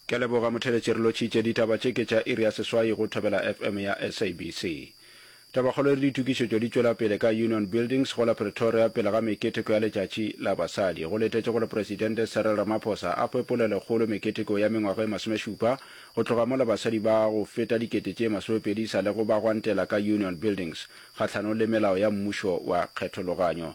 Ke a leboga motheletši re lotšhitše ditaba tše ke tša iri ya seswai go Thobela FM ya SABC. Tabakgolo e re ditokišetšo di tšwela pele ka Union Buildings go la Pretoria pele ga meketeko ya letšatši la basadi. Go letetše gore Presidente Cyril Ramaphosa a hwe polelokgolo meketeko ya mengwaga e masomešupa go tloga mola basadi ba go feta dikete tše masomepedi sa lego ba gwantela ka Union Buildings kgahlanong le melao ya mmušo wa kgethologanyo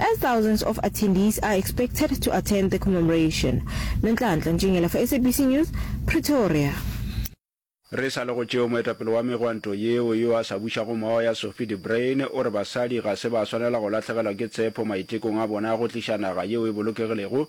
as thousands of attendees are expected to attend the commemoration. Nonhlanhla Ntšengela for SABC News, Pretoria. Re sa le go tšeo, moetapele wa megwanto yeo yo a sa bušago moya Sophie de Bruyn o re basadi ga se ba swanela go lahlegelwa ke tshepo maitekong a bona a go tliša naga yeo e bolokegilego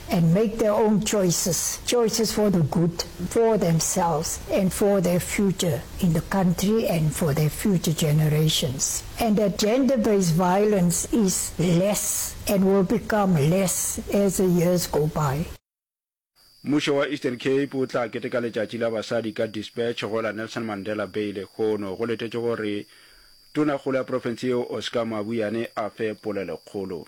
and make their own choices, choices for the good for themselves and for their future in the country and for their future generations, and that gender-based violence is less and will become less as the years go by. Mmušo wa Eastern Cape o tla keteka letšatši la basadi ka Dispatch go la Nelson Mandela Bay lehono. Go letetšwe gore Tonakgolo ya profense yeo Oscar Mabuyane a fe polelokgolo.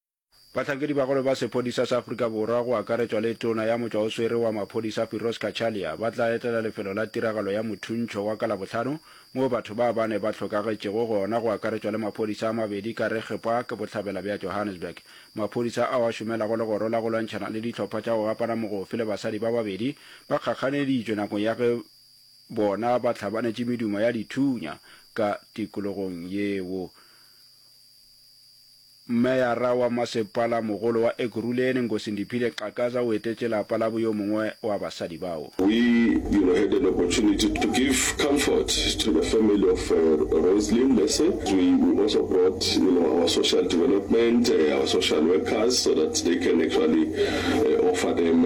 Bahlankedi bagolo ba sephodisa sa Afrika Borwa go akaretšwa le Tona ya Motšwaoswere wa Maphodisa Firoz Cachalia ba tla etela lefelo la tiragalo ya Mothuntšho wa ka Labohlano moo batho ba bane ba hlokagetšego gona go akaretšwa le maphodisa a mabedi ka Reg Park bohlabela bja Johannesburg. Maphodisa ao a šomelago legoro la go lwantšhana le dihlopha tša go gapana mogofe le basadi ba babedi ba kgakganeditšwe nakong ya ge bona ba hlabanetše medumo ya dithunya ka tikologong yeo. Meyara wa Masepalamogolo wa Ekurhuleni, Nkosindiphile Xakaza o etetše lapa labo yo mongwe wa basadi bao. We you know had an opportunity to give comfort to the family of Roselyn Lese, we we also brought you know our social development, our social workers so that they can actually offer them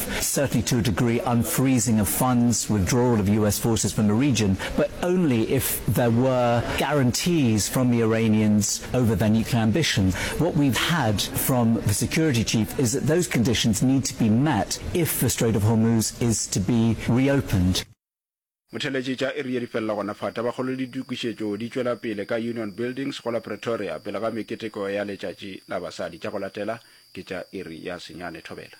Certainly to a degree unfreezing of funds, withdrawal of US forces from the region, but only if there were guarantees from the Iranians over their nuclear ambitions. What we've had from the security chief is that those conditions need to be met if the Strait of Hormuz is to be reopened. Motheletše tša iri ye di felela gona fa Tabakgolo le ditokišetšo di tšwela pele ka Union Buildings go la Pretoria pele ga meketeko ya letšatši la basadi. Tša go latela ke tša iri ya senyane thobela.